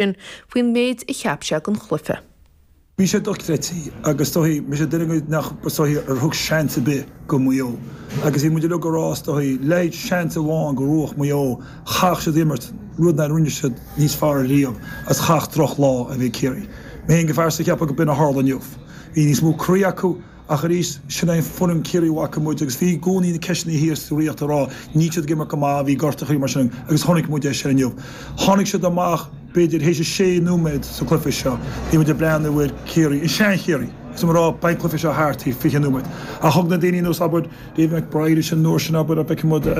sin faoin méid a cheap sé den chluife. Bhí sé dochreidte agus is dóichí mise duine acu nach dtug seans ar bith go Maigh Eo agus bhí muid uilig ag rá is dóichí le haghaidh seans amháin go mbuafadh Maigh Eo, chaithfeadh siad imirt rud nár rinne siad níos fearr riamh agus chaithfeadh droch lá a bheith ag Ciarraí. Mé féin go pearsanta cheapfainn go b'in a tharla inniu. Bhí níos mó croí acu. Ach arís, sin é foireann Chiarraí a bhfaca muid agus bhí i gcónaí na ceisteanna thíos sa Ríocht ag rá, níl siad ag imirt go maith, bhí gortachaí mar sin agus chonaic muid é sin inniu. Tháinig siad amach, b'fhéidir, théis a sé nóiméad sa cluiche seo, bhí muid ag breathnú ar Chiarraí, an sean-Chiarraí, is mé a rá, beidh an cluiche seo thart théis fiche nóiméad ach thug na daoine ar nós, abair, David McBrien ansin an uair sin, abair, fheiceann muid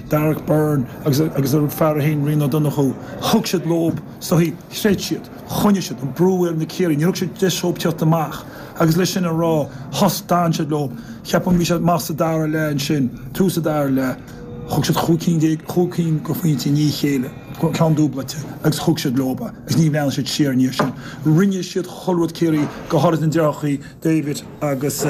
Darragh Beirne agus agus a fear a haon, Rian Ó Donnchú, thug siad leob, is dóichí, chreid siad, choinnigh siad an brú ar na Ciarraí, níor thug siad deis dhóib teacht amach. Agus leis sin a rá, thus, d'fhan siad leo, cheapfainn, bhí siad maith sa dara leath ansin, tús an dara leath, thug siad chúig cinn de, chúig cinn de phointí i ndiaidh a chéile, ceann dúblaite agus thug siad leob é agus níor bhreathnaigh siad siar ina dhiaidh sin. Rinne siad chuile rud Ciarraí, go háirid na deartháireachaí David agus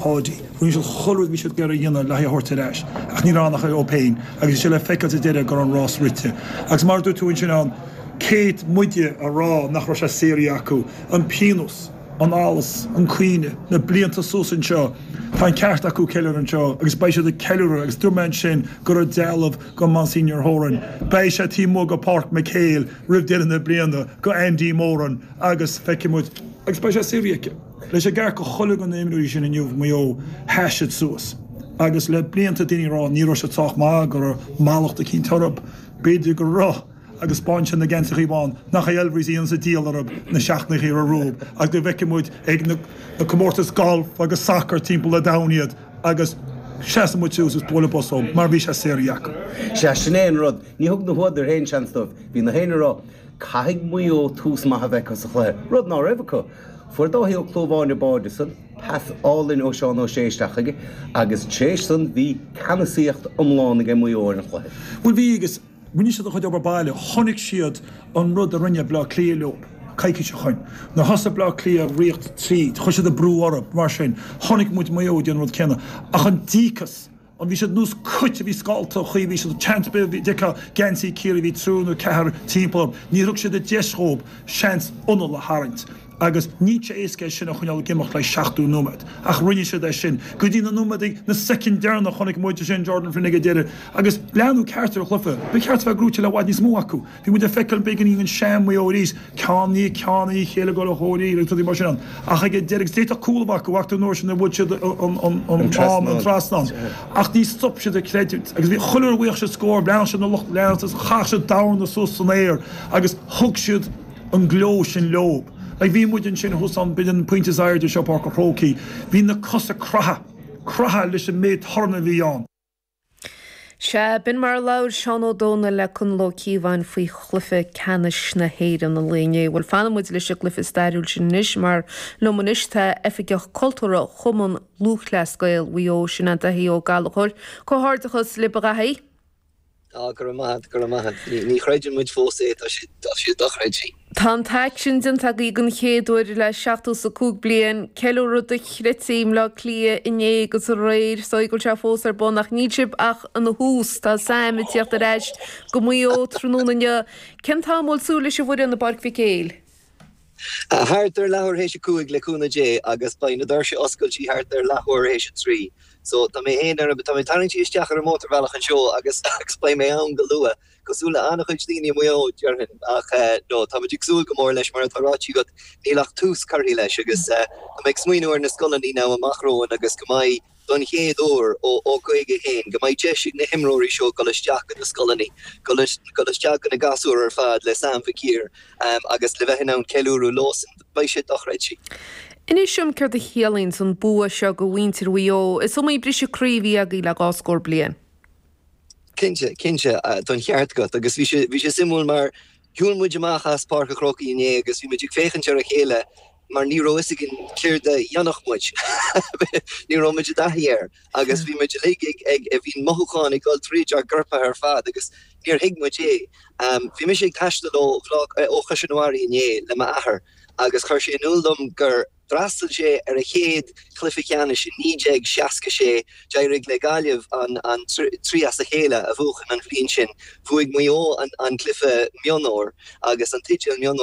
Paudie, rinne siad chuile rud a bhí siad ag iarraidh a dhéanamh le haghaidh a thabhairt ar ais ach níor fhan ach Ó féin agus bhí sé le feiceáil sa deireadh go raibh an rás rite. Agus mar a dúirt tú ansin, an, cé hiad muide a rá nach raibh sé saothraithe acu, an pionós. an allas, an caoineadh, na blianta suas anseo. Tá an ceart acu ceiliúradh anseo agus beidh siad ag ceiliúradh agus dúirt mé ansin go raibh dealbh go Monsignor Horan, beidh sé taobh amuigh go Páirc MacHale roimh deireadh na bliana, go Andy Moran agus feicfidh muid. Agus beidh sé saothraithe acu. Beidh sé ceart go chuile dhuine na himreoirí sin inniu Maigh Eo sheas siad suas agus le blianta daoine ag rá ní raibh siad sách maith, go raibh mallacht eicínt orthu, b'fhéidir go raibh, agus b'ansin na geansaíochaí bána, nach é Elvery's a dhéanfas an díol orthu, na seachtainíochaí atá rompu agus go bhfeicfidh muid ag na comórtais gailf agus sacair timpeall an domhain iad agus seasfaidh muid suas is bualadh bos dhóib mar bhí sé saothraithe acu. Sea, sin é an rud. Ní thug na húdair aon seans dóibh. Bhí gach éinne ag rá, 'Caithfidh Maigh Eo tús maith a bheith acu sa chluiche', rud ná raibh acu. Fuair Dáithí Ó Clúmháin an báide san, pas álainn ó Sheán Ó Sé isteach chuige, agus tar éis san bhí ceannasaíocht iomlán age Maigh Eo ar an chluiche. Bhuel bhí agus. Rinne siad a gcuid obair baile, chonaic siad an rud a rinne Bleá Cliath leo coicís ó shoin. Nuair thosaigh Bleá Cliath ag ritheacht tríd, chuir siad an brú orthu. Mar sin, chonaic muid Maigh Eo ag déanamh an rud céanna. Ach an díocas, an, bhí siad nós cait a bhí scallta, chaoi bhí siad seans ar bith, bhí, d'fheicfeá geansaí Ciarraí, bhí triúr nó ceathar timpeall orthu, níor thug siad an deis dhóib seans anáil a tharraingt. agus níl sé éasca é sin a choinneáil ag imeacht le seachtó nóiméad, ach rinne siad é sin, go dtí na nóiméad, na soicind deireanacha, chonaic muid, is é an Jordan Flynn ag an deireadh, agus leathnú ceart ar a chluife, ba cheart a bheith gnóite le i bhfad níos mó acu, bhí muid ag feiceáil beagáinín an sean Maigh Eo arís, ceann i ndiaidh ceann, Uí Chéilleagáir, Ó Comhraí agus rudaí mar sin ann, ach ag an deireadh, agus d'fhéadfadh cúl a bheith acu, fágtar an uair sin a bhuail siad an t-am, an trasnán, ach ní stop siad ag creidiúint, agus bhí, chuile uair a bhuadh siad scór, bhreathnaigh siad na lucht leanta, agus chaith siad a lámha suas san aer, agus thug siad. an gleo sin leob. Ach bhí muid ansin thuas ann b'in an pointe is airde sa bPáirc a' Chrócaigh. Bhí na cosa craite, craite leis an méid torann a bhí ann. Sea, b'in mar a labhair Seán Ó Domhnaill le Conall Ó Cíobháin faoi chluiche ceannais na hÉireann an lae inné. Bhuel, fanann muid leis an gcluiche stairiúil sin anois mar liom anois tá Oifigeach Cultúrtha Chumann Lúthchleas Gael Mhaigh Eo, sin é Daithí Ó Gallchóir. Comhghairdeachas libh a Dhaithí! Tá, go raibh maith a't, go raibh maith a't. Ní chreideann muid fós é, tá sé, tá sé dochreidthe. Tá an t-éacht sin déanta agaí don chéad uair le seachtó 's a cúig bliain, ceiliúradh do-chreidte i mBleá Cliath inné agus aréir, is dóigh go bhfuil sé fós ar bun ach níl sibh ach ina thús, tá Sam ag tíocht ar ais go Maigh Eo tráthnóna inniu. Cén t-am a bhfuil súil leis an bhfoireann i bPáirc Mhic Éil? Thart ar leathuair théis a cúig, le cúnamh Dé, agus beidh na doirse oscailte thart ar leathuair théis a trí. So, tá mé féin ar an, tá mé ag tarraingtí isteach ar an mótarbhealach anseo agus, agus beidh mé ann go luath, cosúil le an-chuid daoine i Maigh Eo, déarfainn. Ach, eh, no, táimid ag súil go mór leis, mar atá ráití agat, níl ach tús curtha leis agus, eh, tá mé ag smaoiniú ar na scoileannaí now amach romhainn agus go mbeidh, don chéad uair ó 51, go mbeidh deis ag na himreoirí seo dul isteach go na scoileanna, dul isteach go na gasúir ar fad le Sam Mhic Uidhir agus le bheith in ann ceiliúradh leosan. Beidh sé dochreidte. Inis dom céard a chiallaíonns an bua seo go mhuintir Mhaigh Eo. Is iomaí briseadh croí a bhí agaí le dhá scór bliain. Cinnte, cinnte, tá an ceart agat agus bhí sé suimiúil mar Shiúil muid amach as Páirc an Chrócaigh inné agus bhí muid ag féachaint ar a chéile mar ní raibh fhios againn céard a dhéanfadh muid. Ní raibh muid i dtaithí air agus bhí muid uilig ag, bhí mothúcháin ag dul tríd ár gcoirp ar fad agus níor thuig muid é. Bhí mise ag taisteal ó Chois Fharraige inné le m'athair agus chuir sé in iúl dom gur, D'fhreastail sé ar a chéad chluiche ceannais i 1966. D'éirigh le Gaillimh an trí as a chéile a bhuachan an bhliain sin. Bhuaigh Maigh Eo an cluiche mionúr agus an teideal mionúr.